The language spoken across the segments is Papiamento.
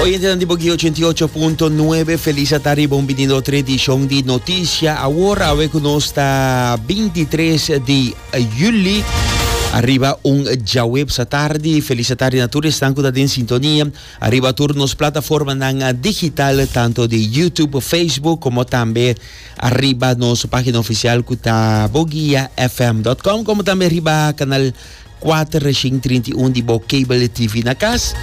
Oyentenan di Boguí 88.9, feliz a ta riba un binido otro edishon di Notisha Awor, awe ku nos ta 23 di juli. Arriba un djawebs a tardi, feliz a tardi na tur esnan ku ta den sintonia. Arriba tur nos plataformanan digital, tanto di YouTube, Facebook, komo tambe arriba nos página ofisial ku ta boguiafm.com, komo tambe riba kanal 4 reshin trinta i un di bo kabel di TV na kas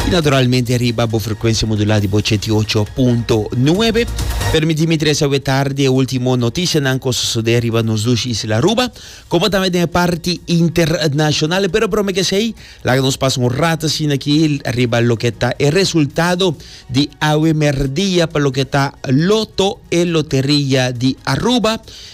i naturalmente riba bo frekuensia modulá di bo chet i ocho punto nuebe. Permití mi trese awe tardi e último notisianan ku a sosodé riba nos dushi isla Aruba, komo tambe den e parti internashonal. Pero promé ke esei, laga nos pasa un rato asina aki riba loke ta e resultado di awe merdia pa loke ta Loto, e loteria di Aruba.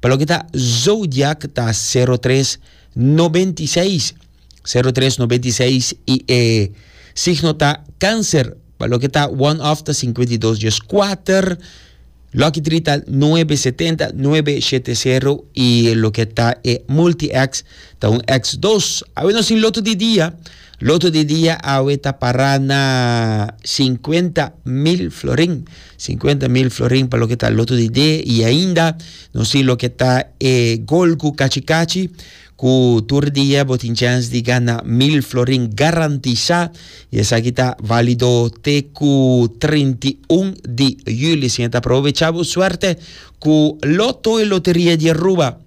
Pa loke ta zodiak ta sero tres noventa i seis, sero tres noventa i seis i e signo ta Cancer. Pa loke ta one of ta sinkuenta i dos dies kuater, lucky three ta nuebe setenta, nuebe shete sero i loke ta e multi ex ta un ex dos. Awor nos tin loto di dia. Loto di dia awe ta pará na sinkuenta mil florin. Sinkuenta mil florin pa loke ta loto di dé i ainda nos tin loke ta e gol ku kachi kachi ku tur dia bo tin chèns di gana mil florin garantisá i esaki ta válido te ku trinta i un di yüli. Siña ta aprovechá bo suerte ku Loto e loteria di Aruba.